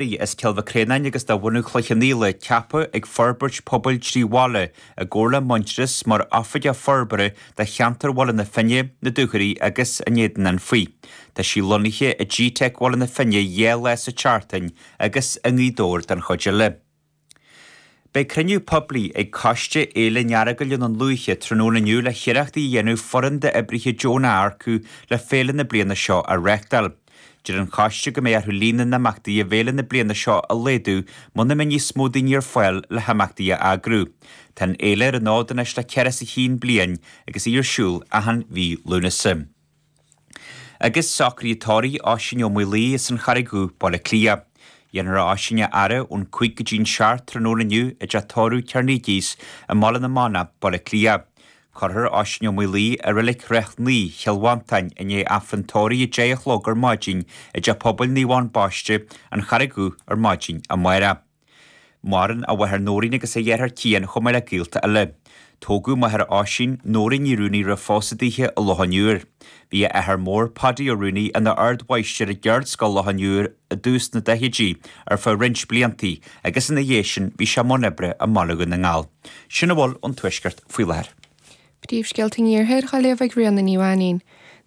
Bhí as Cill Mhic Réanáin agus de bhunadh Chloich Cheann Fhaola ceaptha ag forbairt pobail trí bhaile i gcomhar le Muintearas mar Oifigeach Forbartha do cheantar Bhaile na Finne, na Dúchoraidh agus an Éadain Anfaigh. Tá sí lonnaithe i GTeic Bhaile na Finne dhá lá sa tseachtain agus i nGaoth Dobhair don chuid eile. Beidh cruinniú poiblí ag Coiste Fhéile an Earagail i nDún Lúiche tráthnóna inniu le hiarrachtaí a dhéanamh foireann d'oibrithe deonacha a earcú le féile na bliana seo a reachtáil. Deir an Coiste go mbeidh orthu líon na n-imeachtaí i bhféile na bliana seo a laghdú muna mbeidh níos mó daoine ar fáil le himeachtaí a eagrú. Tá an fhéile ar an fhód anois le ceithre is a chinn bliain agus í ar siúl achan mhí Lúnasa. Agus socruithe tórraimh Oisín Ó Maolaodha as an Charraig Dhubh, Baile Átha Cliath. Dhéanfar Oisín a fhaire ón cúig go dtí'n seacht tráthnóna inniu i dteach tórraimh Carnegies i mBaile na Manach, Baile Átha Cliath. Cuirfear Oisín Ó Maolaodha i Reilig Ráth Naoi, Chill Mhantáin, i ndiaidh Aifreann tórraimh a deich a chlog ar maidin i dTeach Pobail Naomh Eoin Baiste, An Charraig Dhubh, ar maidin amárach. Maireann a mháthair Nóirín agus a dheartháir Cian chomh maith le gaolta eile. Tógadh máthair Oisín, Nóirín Ní Rúnaí roimh phósadh daoithe i Loch an Iúir. Bhí a athair mór, Paidí Ó Rúnaí, ina ardmháistir i gceardscoil Loch an Iúir i dtús na daichidí ar feadh roinnt bliantaí agus ina dhiaidh sin bhí sé i mbun oibre i mBaile Dhún na nGall. Sin a bhfuil ón Tuaisceart faoi láthair. Príomhscéalta an Iarthair dhá léamh ag Ríona Ní Mhainín.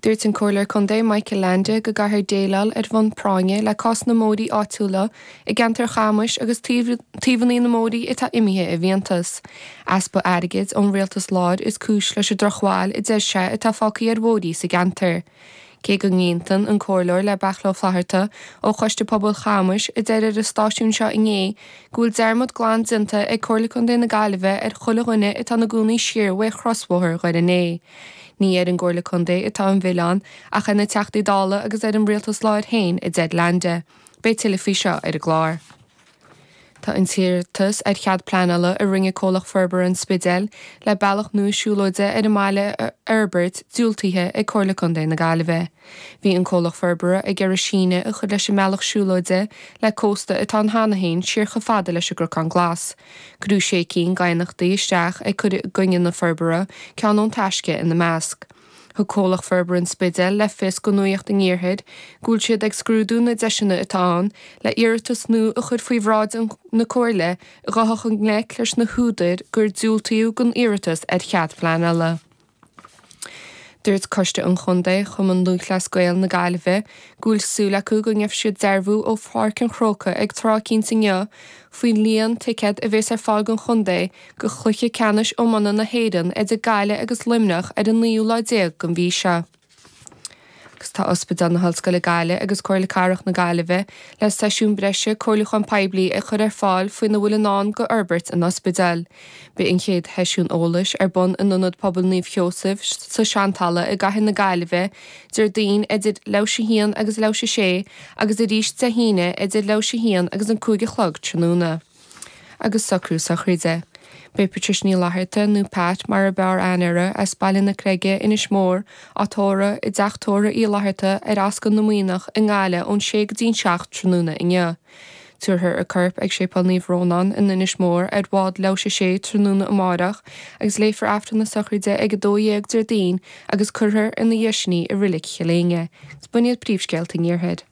Dúirt an Comhairleoir Contae Michael Leainde go gcaithfear déileáil ar bhonn práinne le cás na mbóithrí áitiúla i gceantar Chamuis agus taobhannaí na mbóithrí atá imithe i bhfiántas. Easpa airgid ón Rialtas Láir is cúis leis an drochbhail a deir sé atá fágtha ar bhóithrí sa gceantar. Cé go n-aontaíonn an Comhairleoir le Beachla Ó Flatharta ó Choiste Pobail Chamuis a deir ar an stáisiún seo inné go bhfuil dearmad glan déanta ag Comhairle Contae na Gaillimhe ar chuile dhuine atá ina gcónaí siar uaidh chrosbhóthar Dhoire Né, ní ar an gComhairle Contae atá an mhilleán ach ar na Teachtaí Dála agus ar an Rialtas láir féin, a deir Leainde. Beidh tuilleadh faoi seo ar an gclár. Tá an t-iarratas ar chead pleanála a rinne Comhlacht Forbartha an Spidéil le bealach nua siúlóide ar an mbaile a fhorbairt diúltaithe ag Comhairle Contae na Gaillimhe. Bhí an Comhlacht Forbartha ag iarraidh síneadh a chur leis an mbealach siúlóide le cósta atá ann cheana féin siar chomh fada leis an gCnocán Glas. Cuireadh sé cinn d'aighneachtaí isteach ag cur i gcoinne na forbartha, ceann ón Taisce ina measc. Thug Comhlacht Forbartha an Spidéil le fios do nuaíocht an Iarthair go bhfuil siad ag scrúdú na deiseanna atá ann le iarratas nua a chur faoi bhráid na Comhairle a ghabhfadh i ngleic leis na húdair gur diúltaíodh don iarratas ar chead pleanála. Dúirt Coiste an Chontae Chumann Lúthchleas Gael na Gaillimhe go bhfuil súil acu go ngeobhaidh siad dearbhú ó Pháirc an Chrócaigh ag tráth eicínt inniu faoin líon ticéad a bhéas ar fáil don chontae do chluiche ceannais iomána na hÉireann idir Gaillimh agus Luimneach ar an naoú lá déag den mhí seo. Agus tá Ospidéal na hOllscoile Gaillimh agus Comhairle Cathrach na Gaillimhe le seisiún breise comhairliúcháin poiblí a chur ar fáil faoina bhfuil i ndán go fhorbairt an ospidéil. Beidh an chéad sheisiún eolais ar bun in Ionad Pobail Naomh Sheosaimh sa tSeantalamh i gCathair na Gaillimhe Déardaoin idir leathuair tar éis a haon agus leathuair tar éis a sé agus arís Dé hAoine idir leathuair tar éis a haon agus an cúig a chlog tráthnóna. agus socrú sochraide. Beidh Patricia Ní Fhlatharta, nó Pat mar ab fhearr aithne uirthi, as Baile na Creige, Inis Mór, á tórradh i dTeach Tórtha Uí Fhlatharta ar Ascaill na Muimhneach i nGaillimh ón sé go dtí'n seacht tráthnóna inniu. Tabharfar a corp ag Séipéal Naomh Rónán in Inis Mór ar bhád leathuair tar éis a 6 tráthnóna amáireach agus léifear Aifreann na Sochraide ag 12 Déardaoin agus cuirfear ina dhiaidh sin í i Reilig Chill Éinne. Is b'in iad príomhscéalta an Iarthair.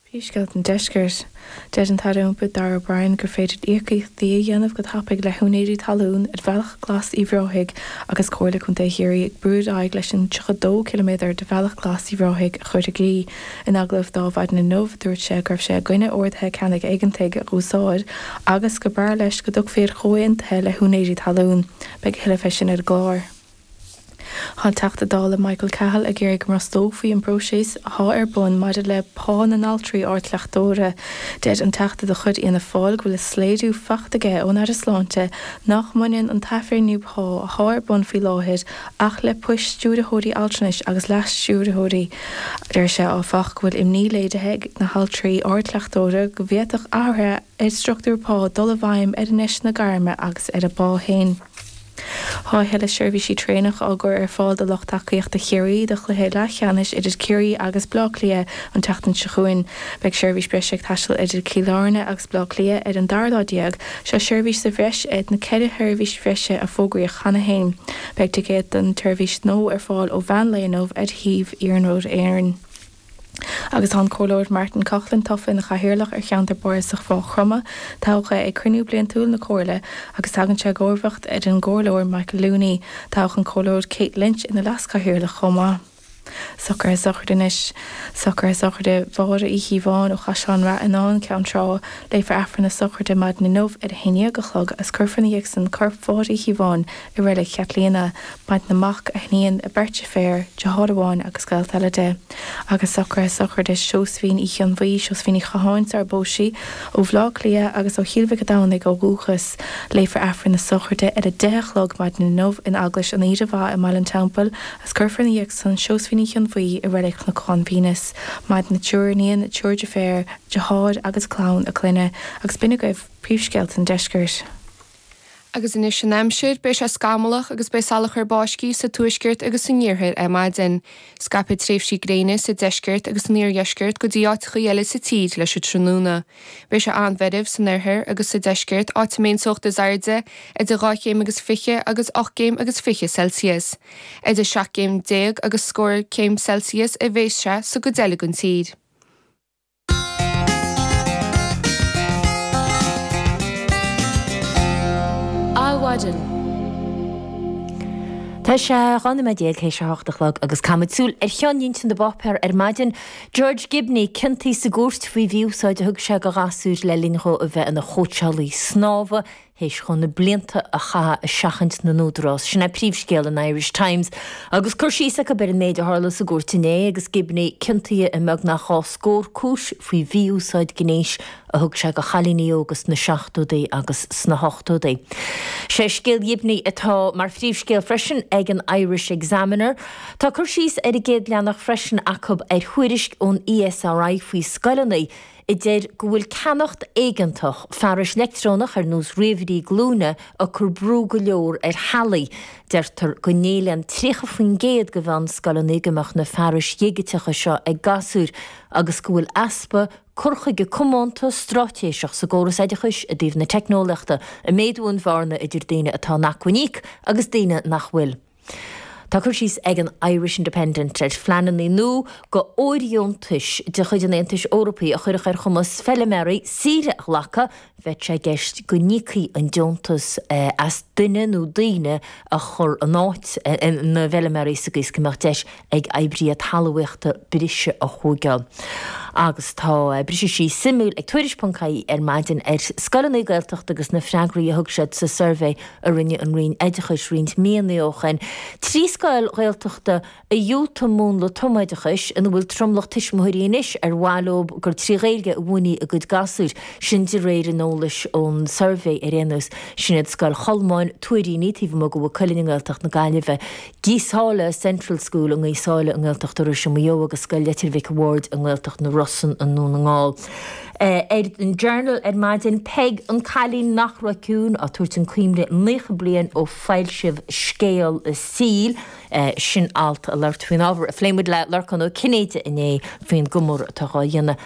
Príomhscéalta an Deiscirt. Deir an tAire Iompair Darragh O'Brien gur féidir íocaíochtaí a dhéanamh go tapaidh le húinéirí talún ar Bhealach Glas Uíbh Ráthaigh agus Comhairle Contae Chiarraí ag brú ar aghaidh leis an 32 ciliméadar de Bhealach Glas Uíbh Ráthaigh a chur i gcrích. In agallamh ar Adhmhaidin inniu dúirt sé go raibh sé i gcoinne orduithe ceannaigh éigeantaigh a dh'úsáid agus gur b'fhearr leis go dtiocfaí ar chomhaontuithe le húinéirí talún. Beidh a thuilleadh fé sin ar an gclár. Tá an Teachta Dála Michael Cahill ag iarraidh go mbrostófaí an próiseas atá ar bun maidir le pá na n-altraí ardchleachtóra. Deir an Teachta de chuid Fhianna Fáil go bhfuil soiléiriú faighte aige ón Aire Sláinte nach mbaineann an t-athbhreithniú pá atá ar bun faoi láthair ach le poist stiúrthóirí altranais agus leas-stiúrthóirí. Deir sé, áfach, go bhfuil imní léirithe ag na haltraí ardchleachtóra go bhféadfadh athruithe ar struchtúr pá dul i bhfeidhm ar a ndeiseanna gairme agus ar a bpá féin. Tá a thuilleadh seirbhísí traenach á gcur ar fáil do lucht tacaíochta Chiarraí do chluiche leathcheannais idir Ciarraí agus Bleá Cliath an tseachtain seo chugainn. Beidh seirbhís breise ag taisteal idir Cill Airne agus Bleá Cliath ar an dara lá déag, seo seirbhís sa bhreis ar na ceithre sheirbhís bhreise a fógraíodh cheana féin. Beidh ticéid don tseirbhís nua ar fáil ó mheán lae inniu ar shuíomh Iarnród Éireann. Agus tá an Comhairleoir Martin Coughlan tofa ina chathaoirleach ar cheantar Bardasach Mhaigh Chromtha, toghadh é ag cruinniú bliantúil na Comhairle agus tagann sé i gcomharbhacht ar an gComhairleoir Michael Looney. Toghadh an Comhairleoir Kate Lynch ina leaschathaoirleach chomh maith. Socruithe Sochraide Anois socruithe sochraide Mháire Uí Chíobháin ó Chaisleán Ráthanáin, Ceann Trá. Léifear Aifreann na sochraide maidin inniu ar a haon dhéag a chlog agus cuirfear ina dhiaidh san corp Mháire Uí Chíobháin i reilig Chaitlíona, maireann a mac, a hiníon, beirt deirféar, deartháir amháin agus gaolta eile di, agus socruithe sochraide Sheosaimhín Uí Chonbhuí, Seosaimhín Ní Chatháin sarar phós sí ó Bhleá Cliath agus ó Chill Mhic a' Domhnaigh ó dhúchas. Léifear Aifreann na sochraide ar a deich a chlog maidin inniu in Eaglais an Aoire Mhaith i mBaile an Teampaill agus cuirfear ina dhiaidh san Seosaimhín Uí Chonbhuí i reilig Chnocán Véineas, maireann a triúr iníon, triúr deirféar, deartháir agus clann a clainne, agus b'in é agaibh príomhscéalta an deiscirt. Agus anois an aimsir, beidh sé scamallach agus beidh salachar báistí sa tuaisceart agus san iarthar ar maidin. Scaipfidh tréimhsí gréine sa deisceart agus san oirdheisceart go dtí áiteachaí eile sa tír leis an tráthnóna. Beidh sé an-mheirbh san oirthear agus sa deisceart, áit a mbeidh an teocht is airde idir dhá chéim agus fiche agus ocht gcéim agus fiche Celsius. Idir seacht gcéim déag agus scór céim Celsius a bheas sé sa gcuid eile den tír. Adhmhaidin. Tá sé 12 nóiméad théis a hocht a chlog agus caithfimid súil ar cheannlínte na bpáipéar ar maidin. George Gibney ciontaithe sa gcúirt faoi mhí-úsáid a thug sé do ghasúir le linn dhó a bheith ina chóitseálaí snámha théis dhó na blianta a chaitheadh ag seachaint na n-údarás. Sin é príomhscéal an Irish Times, agus cur síos acu ar an méid a tharla sa gcúirt inné agus Gibney ciontaithe i mbeagnach dhá scór cúis faoi mhí-úsáid gnéis a thug sé do chailíní óga sna seachtóidí agus sna hochtóidí. Sé scéal Ghibney atá mar phríomhscéal freisin ag an Irish Examiner. Tá cur síos ar an gcéad leathanach freisin acu ar thuairisc ón ESRI faoi scoileanna a deir go bhfuil ceannacht éigeantach fearais leictreonach ar nós ríomhairí glúine ag cur brú go leor ar theaghlaigh. Deirtear go n-éilíonn 30% de mheánscoileanna go mbeadh na fearais dhigiteacha seo ag gasúir agus go bhfuil easpa cur chuige comónta stráitéiseach sa gcóras oideachais i dtaobh na teicneolaíochta ag méadú an bhearna idir daoine atá in acmhainn íoc agus daoine nach bhfuil. Tá cur síos ag an Irish Independent ar phleananna nua d'fhóirdheontais de chuid an Aontais Eorpaigh a chuirfeadh ar chumas feilméaraí saoire a ghlacadh, bheadh sé i gceist go n-íocfaí an deontas as duine nó daoine a chur in áit na bhfeilméaraí sa gcaoi is go mbeadh deis ag oibrithe talmhaíochta briseadh a thóigeáil. Agus tá briseadh síos suimiúil ag Tuairisc.ie ar maidin ar scoileanna Gaeltachta agus na freagraí a thug siad sa suirbhé a rinne an Roinn Oideachais roinnt míonna ó shin. Trí scoil Ghaeltachta a dhiúltaigh múnla tumoideachais ina bhfuil tromlach tuismitheoirí anois ar mhaith leo gur trí Ghaeilge a mhúinfí a gcuid gasúir, sin de réir an eolais ón suirbhé ar aon nós. Sin iad Scoil Cholmáin, Tuairíní, taobh amuigh de Mhaigh Cuilinn i nGaeltacht na Gaillimhe, Gaoth Sáile Central School i nGaoth Sáile i nGaeltacht Iorrais i Maigh Eo agus Scoil Leitir Mhic a' Bhaird i nGaeltacht na Rosann i nDún na nGall. Ar an Journal ar maidin, Peig, an cailín nach raibh ciúin, á tabhairt chun cuimhne naocha bliain ó foilsíodh scéal a saoil. Sin alt ag labhairt faoin ábhar a phlé muid le Lorcán Ó Cinnéide inné faoin gcomóradh atá dhá dhéanamh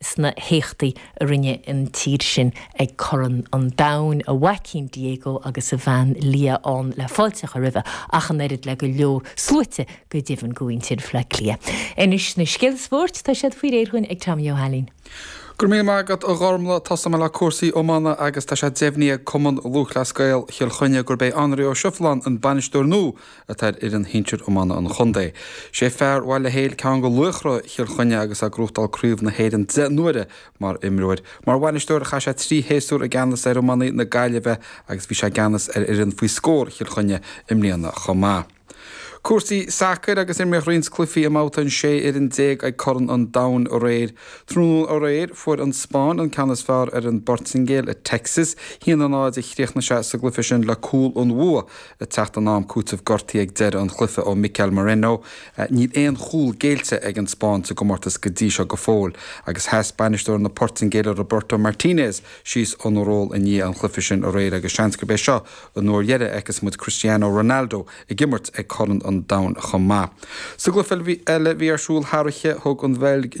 sna héachtaí a rinne an tír sin ag Corn an Domhain, a mhaicín Diego agus a bhean Lia ann le fáilte a chur roimhe, ach an oiread le go leor sluaite, go deimhin, go muintir Bhleá Cliath. Anois na scéalta spóirt, tá siad faoi réir againn ag Tommy Ó hAilín. Go raibh míle maith agat, a Ghormlaith. Tosóidh mé le cúrsaí iomána agus tá sé deimhnithe ag Cumann Lúthchleas Gael Chill Chainnigh gurb é Anraí Ó Seifileáin an bainisteoir nua atá ar fhoireann shinsir iomána an chontae. Sé fear Bhaile Héil duine de laochra Chill Chainnigh agus é ag gnóthachtáil craobh na hÉireann deich n-uaire mar imreoir. Mar bhainisteoir chaith sé trí shéasúr i gceannas ar iománaí na Gaillimhe agus bhí sé i gceannas ar fhoireann faoi scór Chill Chainnigh i mbliana chomh maith. Cúrsaí sacair agus imríodh roinnt cluichí i mBabhta an 16 fhoireann ag Corn an Domhain aréir. Tráthnóna aréir fuair an Spáinn an ceann is fearr ar an bPortaingéil i Texas. A haon a náid a chríochnaigh sé sa gcluiche sin le cúl an bhua Ag teacht in am cúitimh gortuithe ag deireadh an chluiche ó Mikel Merino. Níl aon chúl géillte ag an Spáinn sa gcomórtas go dtí seo go fóill agus sheas bainisteoir na Portaingéile Roberto Martinez síos óna ról i ndiaidh an chluiche sin aréir agus seans gurb é seo an uair dheiridh a fheicfeas muid Cristiano Ronaldo ag imirt ag Corn an Domhain chomh maith. Sa gcluiche eile a bhí ar siúl thar oíche, thug an Bheilg